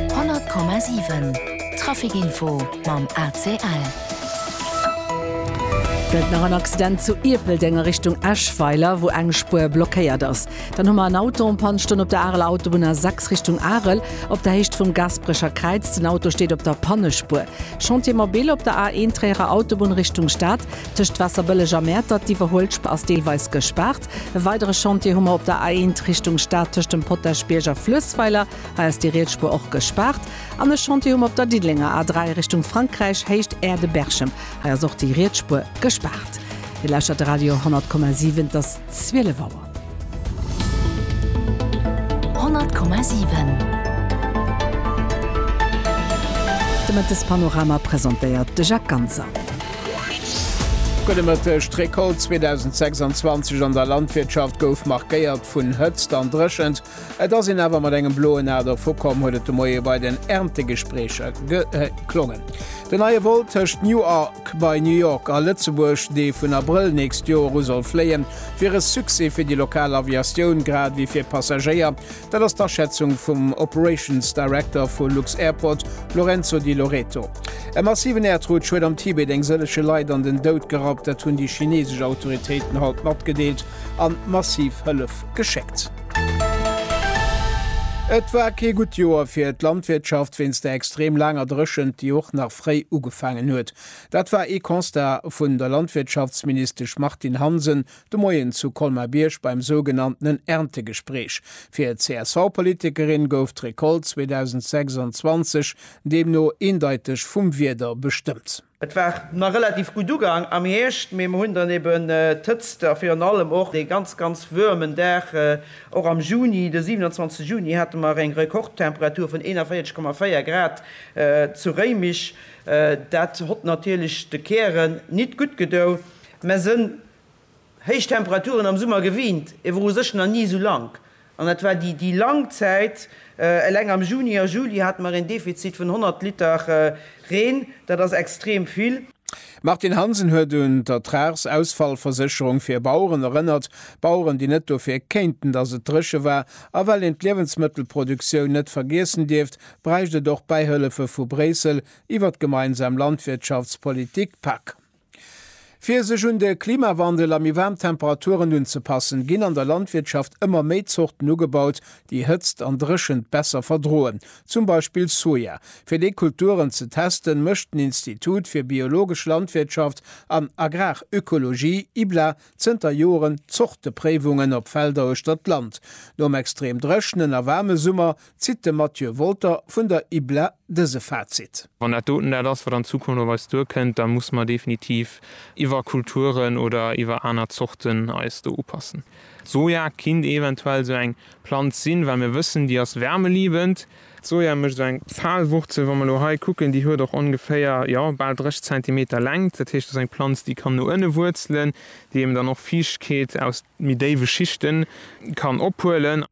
100,7 Trafic-Info mam ACL. Gëtt nach en Accident zu Ierpeldeng a Richtung Eschweiler, wou eng Spuer blockéiert ass. Dann hu mer en Auto en Panne stoen op der Areler Autobunn A6 Richtung Arel, op der Héicht vum Gasperecher Kräiz. Den Auto steet op der Pannespuer. Chantier mobil op der A1 Tréierer Autobunn Richtung Stad, tëscht Waasserbëlleg a Mäertert. D'Iwwerhuelspr ass deelweis gespaart. E weidere Chantier hu mer op der A1 Richtung Stad tëscht dem Potaschbierg a Fluessweiler. Hei ass déi riets Spuer och gespaart. An e Chantier hu mer op der Diddelenger A3 Richtung Frankräich, Héicht Aire-de-Berchem. Hei ass och déi riets Spuer gespaart. Dir lauschtert de Radio 100,7. Et ass 12 Auer. 100,7. De Mëttespanorama presentéiert de Jacques Ganser. Gudde Mëtteg, D'Recolte 2026 an der Landwirtschaft gouf markéiert vun Hëtzt an Dréchent. Et ass een awer mat engem bloen A dervukomm, huet et de Moie bei den Erntegespreecher geklongen. Den neie Vol tëscht Newark bei New York a Lëtzebuerg, dee vun Abrëll nächst Joer u soll fléien, wier e Succès fir déi lokal Aviatioun, grad ewéi fir Passagéier, Dat ass d'Aschätzung vum Operations Director vu lux-Airport, Lorenzo Di Loreto. E massiven Äerdrutsch huet am Tibet eng sëllege Leit an den Doud gerappt, dat hunn déi chinesesch Autoritéiten haut matgedeelt an massiv Hëllef geschéckt. Et war kee gutt Joer fir d'Landwirtschaft wéinst der extrem laanger Dréchent, déi och nach fréi ugefaangen huet. Dat war ee Constat vun der Landwirtschaftsministesch Martine Hansen De Moien zu Colmar-Bierg beim sougenanntenen Erntegespreech fir d'CSV-Politikerin gouf d'Recolte 2026 deemno eendeiteg vum Wieder bestëmmt. Et war nach relativ gutt ugaang am Hierscht, mee mer hunn dann eben d'Hëtzt a virun allem och dee ganz, ganz woarmen Dag. Och am Juni, de 27 Juni, hate mer eng Rekordtemperatur vun 41,4 Grad zu Réimech. Dat hott natierlech de Kären nit gutt gedoun, mä se héich Temperaturen am Summer gewiint, ee wor u sech nach ni esou lang, an dat war déi déi lang Zäit. Eleng am Juni a Juli hate mer een Defizit vun 100 Liter Reen, dat ass extrem vill. D'Martine Hansen huet un d'Ertragsausfallversécherung fir Baueren erënnert, Baueren, déi net dofir kéinten, datt et dréche war. A well een d'Liewensmëttelproduktioun net vergiessen dierft, bräicht et och Bäihëllefe vu Bréissel iwwer d'gemeinsam Landwirtschaftspolitik, PAK. Fir sech un de Klimawandel a méi waarm Temperaturen unzepassen, ginn an der Landwirtschaft ëmmer méi Zorten ugebaut, déi Hëtzt an Dréchent besser verdroen, zum Beispill Soja. Fir déi Kulturen ze testen, mécht den Institut fir biologesch Landwirtschaft an Agrarökologie, IBLA, Zënter Joren Zortepréiwungen op Felder uechter d'Land. Nom extrem dréchnen a waarme Summer zitt de Mathieu Wolter vun der IBLA dëse Fazit. Wann dat doten dat ass, wat an Zukunft op eis duerkënnt, da musse mer definitiv iwwer Kulturen oder iwwer aner Zorten eis do upassen. Soja kinnt eventuell esou eng Planz sinn, well mir wëssen, déi ass wärmeliebend. D'Soja mécht esou eng faal Wurzel, wa mer elo hei kucken, déi huet och ongeféier, jo, bal 30 Zentimeter Längt. Dat heescht, dat ass eng Planz, déi kann no ënne wuerzelen, déi eben dann och Fiichtkeet aus méi déiwe Schichten kann ophuelen.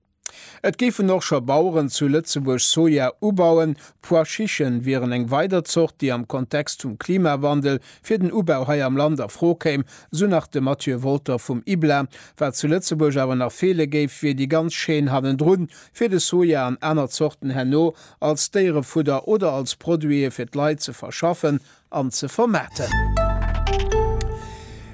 Et géifen och scho Baueren zu Lëtzebuerg Soja ubauen. D'Pois chichen wieren eng weider Zort, déi am Kontext vum Klimawandel fir den Ubau hei am Land a Fro kéim, esou nach de Mathieu Wolter vum IBLA. Wat zu Lëtzebuerg awer nach feele géif, wier déi ganz Chaîne hannendrun, fir de Soja an aner Zorten herno als Déierefudder oder als Produite fir d'Leit ze verschaffen an ze vermaarten.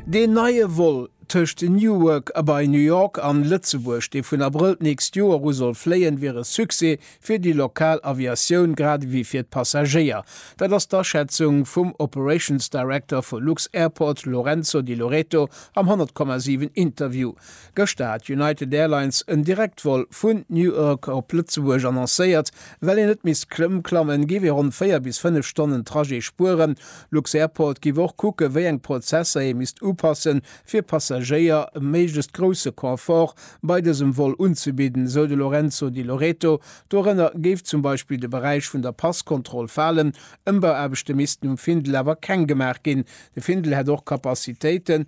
Deen neie Vol tëscht Newark a bei New York an Lëtzebuerg, dee vun Abrëll d'nächst Joer u soll fléien, wier e Succès fir déi lokal Aviatioun grad ewéi fir d'Passagéier. Dat ass d'Aschätzung vum Operations Director vu Lux-Airport Lorenzo Di Loreto am 100,7 Interview. Gëschter hat United Airlines en Direktvol vun Newark op Lëtzebuerg annoncéiert. Well een net misst Klëmm klammen, géif ee ronn 4 bis 5 Stonnen Trajet spueren. Lux-Airport géif och kucken, wéi eng Prozesser ee misst upassen, fir Passagéier e méiglechst grousse Confort bei dësem Vol unzebidden, sou de Lorenzo Di Loreto. Dorënner géif zum Beispill de Beräich vun der Passkontroll falen. Ëmbauaarbechte missten um Findel awer keng gemaach ginn. De Findel hätt och Capacitéiten,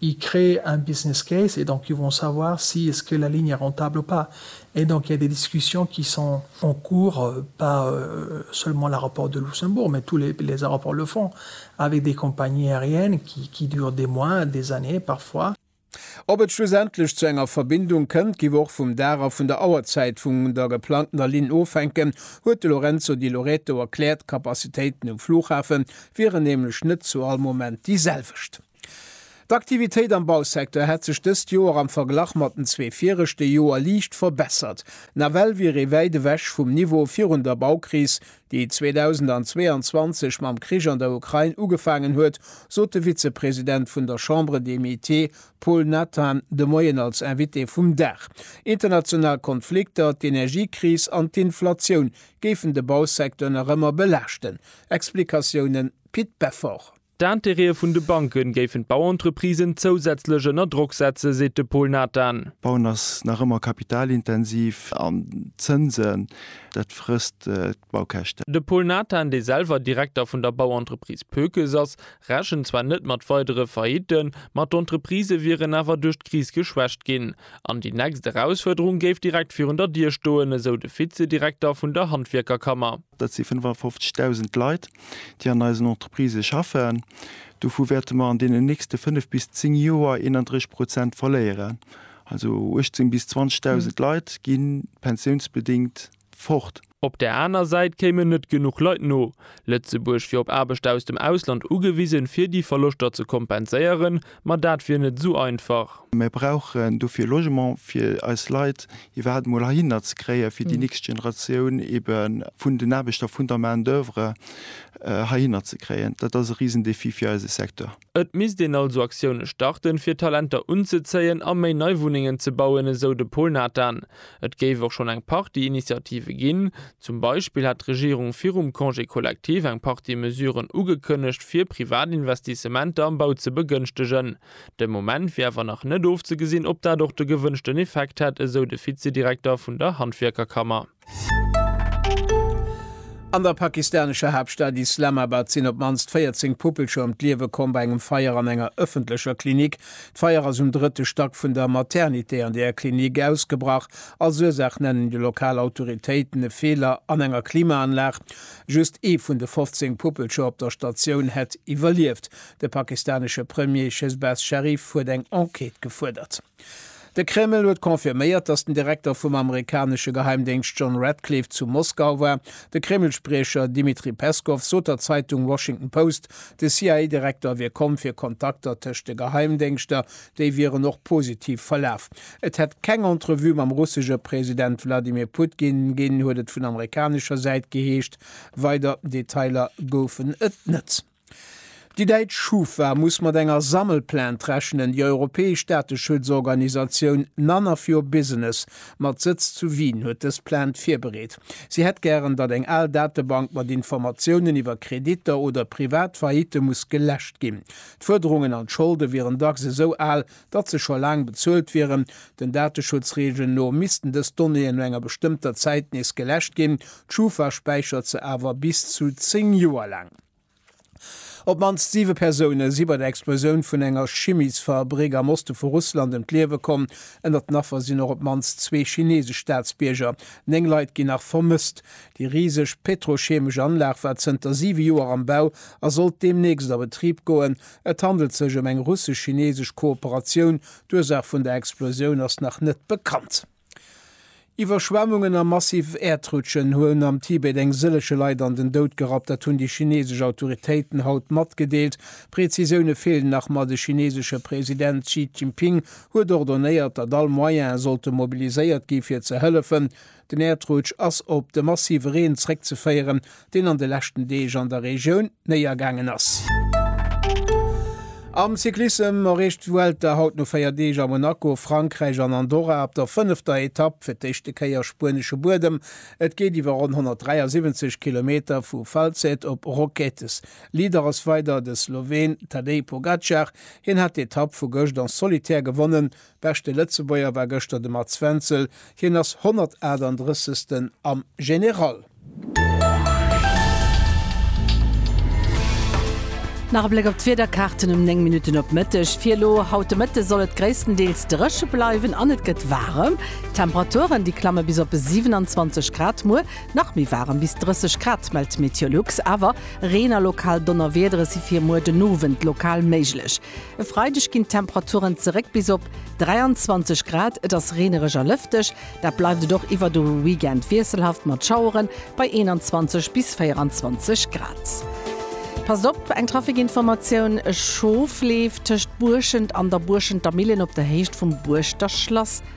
Ils créent un business case et donc ils vont savoir si est-ce que la ligne est rentable ou pas. Et donc il y a des discussions qui sont en cours, pas seulement l'aéroport de Luxembourg, mais tous les aéroports le font, avec des compagnies aériennes qui durent des mois, des années parfois. Ob et schlussendlech zu enger Verbindung kënnt, giff och vum Dag a vun der Auerzäit vun der geplangtener Linn ofhänken, huet de Lorenzo Di Loreto erkläert. D'Kapazitéiten um Flughafen wieren nämlech net zu all Moment déi selwecht. D'Aktivitéit am Bausecteur hätt sech dëst Joer am Verglach mat den zwee viregte Joer liicht verbessert. Nawell wier ee wäit ewech vum Niveau virun der Baukris, déi 2022 mam Krich an der Ukrain ugefaangen huet, sot de Vizepresident vun der Chambre des Métiers Paul Nathan de Moien als Invité vum Dag. International Konflikter, d'Energiekris an d'Inflatioun géifen de Bausecteur nach ëmmer belaaschten. Explikatiounen, Pit Beffort. D'Intérêtë vun de Banke géifen d'Bauentreprisen zousätzlech ënner Drock setzen, seet de Pol Nathan. Bauen ass nach ëmmer kapitalintensiv an d'Zënsen, dat frësst d'Baukäschten. De Pol Nathan, dee selwer Direkter vun der Bauentreprise Pökes ass, rechent zwar net mat weidere Faillitten, ma d'Entreprise wieren awer duerch d'Kris geschwächt ginn. An déi nächst Erausfuerderung géif direkt virun der Dier stoen, esou de Vizedirekter vun der Handwierkerkammer. Dat si 55.000 Leit, déi an eisen Entreprisë schaffen. Dovu wäerte mer an deenen nächste fënnef bis zéng Joer 31 Prozent verléieren. Also 18 bis 20.000 Leit gi pensiounsbedéngt fort. Op där aner Säit kéimen net genuch Leit no Lëtzebuerg fir op Aarbechter aus dem Ausland ugewisen, fir déi Verloschter ze kompenséieren, Ma dat wier net esou einfach. Mir brauchen dofir Logement fir eis Leit iwwerhaapt emol heihinner ze kréien, fir déi nächst Generatioun ebe vun den Aarbechter, vun der Main d'oeuvre heihinner ze kréien. Dat ass e Risendéfi fir eise Secteur. Et misst een also Aktioune starten, fir Talenter unzezéien a méi nei Wunnengen ze bauen, esou de Paul Nathan. Et géif och schonn eng Partie Initiative ginn. Zum Beispill hätt d'Regierung virum Congé collectif eng Partie Mesuren ugekënnegt, fir privat Investissementer am Bau ze begënschtegen. De Moment wier awer nach net ofzegesinn, ob dat och de gewënschten Effekt hätt, esou de Vizedirekter vun der Handwierkerkammer. An der pakistanescher Haaptstad Islamabad sinn op d'mannst 14 Puppelcher ëm d'Liewe komm bei engem Feier an enger ëffentlecher Klinik D'Feier ass um drëtte Stack vun der Maternité an där Klinik ausgebrach. Als Ursaach nennen déi lokal Autoritéiten e Feeler an enger Klimaanlag. Just ee vun de 15 Puppelcher op der Statioun hätt iwwerlieft. De pakistanesche Premier Shehbaz Sharif huet eng Enquête gefuerdert. De Kreml huet confirméiert, datt den Direkter vum amerikanesche Geheimdéngscht John Ratcliffe zu Moskau war. De Kreml-Spriecher Dmitri Peskow sot der Zeitung Washington Post, de CIA-Direkter wier komm fir Kontakter tëscht de Geheimdéngschter, déi wieren och positiv verlaf. Et hätt keng Entrevue mam russesche President Wladimir Putgin ginn, huet et vun amerikanescher Säit geheescht. Weider Detailer goufen et net. Déi däitsch Schufa muss mat enger Sammelplainte rechnen. Déi europäesch Dateschutzorganisatioun None of your business mat Sëtz zu Wien huet dës Plainte virbereet. Si hätt gären, datt eng al Datebank mat Informatiounen iwwer Kreditter oder privat Faillitte muss geläscht ginn. D'Fuerderungen an d'Scholde wieren dacks esou al, datt se scho laang bezuelt wieren. Den Dateschutzreegelen no missten dës Donnéeën no enger bestëmmter Zäit nees geläscht ginn. D'Schufa späichert se awer bis zu 10 Joer laang. Op d'mannst siwe Persoune si bei der Explosioun vun enger Chimiesfabrik am Oste vu Russland ëm d'Liewe komm. Ënnert den Affer sinn och op d'mannst zwee chineesesch Staatsbierger. Néng Leit ginn nach vermësst. Déi riseg petrochemesch Anlag war zënter siwe Joer am Bau a sollt deemnächst a Betrib goen. Et handelt sech ëm eng russesch-chineesesch Kooperatioun. D'Ursaach vun der Explosioun ass nach net bekannt. Iwwerschwemmungen a massiv Äerdrutschen hunn am Tibet eng sëllege Leit an den Doud gerappt. Dat hunn déi chinesesch Autoritéiten haut matgedeelt. Prezisioune feelen nach, ma de chinesesche President Xi Jinping huet ordonéiert, datt all Moyene sollte mobiliséiert gi fir ze hëllefen. Den Äerdrutsch ass op de massive Reen zréckzeféieren, deen an de leschten Deeg an der Regioun néiergaangen ass. Am Cyclissem erreecht d'Vuelta haut no 4 Deeg a Monaco, Frankräich an Andorra op der fënnefter Etapp fir d'éischte Kéier spuenesche Buedem. Et geet iwwer ronn 173 Kilometer vu Falset op Roquetes. Leader ass weider de Sloween Tadej Pogacar, hien hat d'Etapp vu gëscht en solitaire gewonnen. Beschte Lëtzebuerger war gëschter de Mats Wenzel, hien ass 138. am General. Nach e Bléck op d'Wiederkaarten um 9 Minutten op Mëtteg. Fir elo haut de Mëtte soll et gréisstendeels dréche bleiwen an et gëtt waarem. D'Temperaturen, déi klamme bis op 27 Grad. Muer nach méi waarem, bis 30 Grad, mellt Meteolux. Awer Reen a lokal Donnerwiedere si fir muer den Owend lokal méiglech. E Freideg ginn d'Temperaturen zeréck bis op 23 Grad. Et ass reenereg a lëfteg, dat bleift et och iwwer de Weekend, wiesselhaft mat Schauere bei 21 bis 24 Grad. Passt op, eng Trafikinformatioun, E Schof leeft tëscht Buerschent an der Buerschenter Millen op der Héicht vum Buerschter Schlass.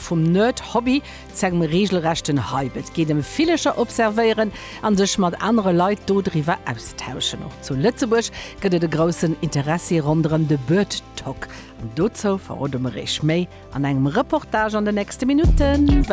Vum Nerd-Hobby zu engem reegelrechten Hype, et geet ëm Villecher observéieren an sech mat anere Leit do driwwer austauschen. Och zu Lëtzebuerg gëtt et e groussen Interessi ronderëm de Birdtalk an dozou verrode mer Iech méi an engem Reportage an den nächste Minutten.